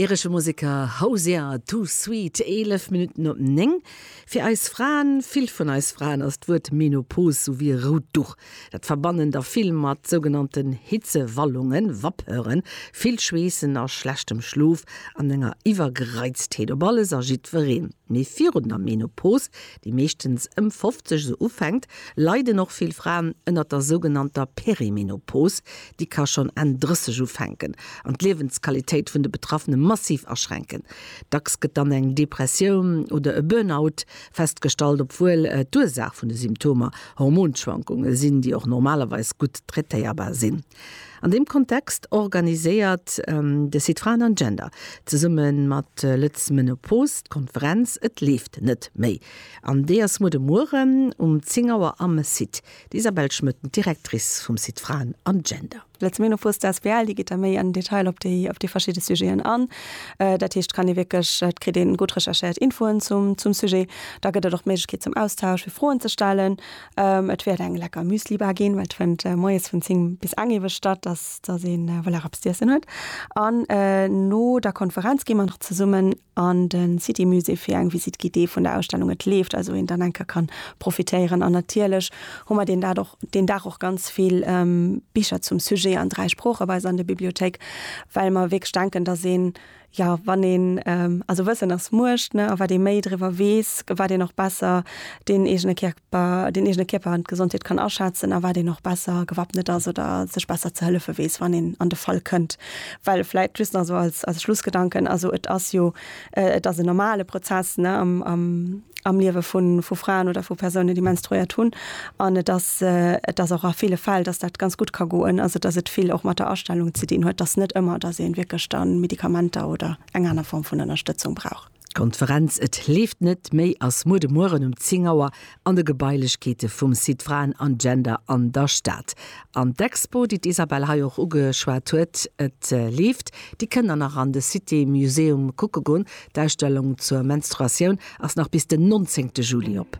Iresche Museker Hozier, Too Sweet, 11 Minutten op 9. Fir eis Fraen, vill vun eis Fraen, ass d'Wuert Menopause sou wéi e rout Duch. Dat verbannen der vill mat sougenannten Hitzewallungen, Vapeuren, vill Schweessen a schlechtem Schlof an enger Iwwergereiztheet op alles a jiddwereen. Mee virun der Menopause, déi meeschtens ëm 50 sou ufänkt, leiden och vill Fraen ënnert der sougenannter Perimenopause, Déi ka schonn Enn 30 ufänken an d'Liewensqualitéit vun de Betraffene massiv aschränken. Dacks gëtt dann eng Depressioun oder e Burnout festgestallt, obwuel d'Ursaach vun de Symptomer Hormonschwankunge sinn, déi och normalerweis gutt traitéierbar sinn. An deem Kontext organiséiert de Site Fraen an Gender zesumme mat Lët'z Menopause d'Konferenz Et leeft net méi. An déi ass muer de Mueren um 10 Auer am Site. D'Isabelle Schmëtt, Directrice vum Site Fraen an Gender. D'Letz Menopause, d'asbl, déi geet da méi an Detail op déi op déi verschidde Sujeten an. Dat heescht, et kann ee wierklech, et kritt een gutt recherchéiert Infoen zum zum Sujet. Da gëtt et och d'Méiglechkeet zum Austausch, fir Froen ze stellen. Et wäert eng lecker Müslibar ginn, well et fënnt moies vun 10 bis eng ewech statt, dass dass ee voilà, eppes z'iessen huet. An no der Konferenz gi mer nach zesummen an de City Musée fir eng Visite guidée vun der Ausstellung Et leeft, also een dann enker kann profitéieren an natierlech hu mer deen Dag och deen Dag och ganz vill Bicher zum Sujet an dräi Sprooche bei eis an der Bibliothéik, well mer wierklech denken, dass een, jo wann een, also Wëssen ass Muecht, ne, a wat ee méi driwwer weess, wat een och besser deen eegene Kär den eegene Kierper an d'Gesondheet kann aschätzen a wat een och besser gewappnet ass oder sech besser ze hëllefe weess, wann een an de Fall kënnt. Well vläit just nach esou als Schlussgedanken, also et ass jo, et ass en normale Prozess am Liewe vu Fraen oder vu Persounen, déi menstruéiert hunn an et ass, et ass och a ville Fäll, datt dat ganz gutt ka goen, also datt et vill och mat der Astellung ze dinn huet, datt net ëmmer, datt ee wierklech da Medikamenter oder eng aner Form vun Ënnerstëtzung brauch. D'Konferenz Et leeft net méi ass muer de Mueren um 10 Auer an de Gebailechkeete vum Site Fraen an Gender an der Stad. An d'Expo, déi d'Isabelle hei och ugeschwat huet, Et leeft, déi kënn der nach an de Cité Museum kucke goen. D'Ausstellung zur Menstruatioun ass nach bis den 19 Juli op.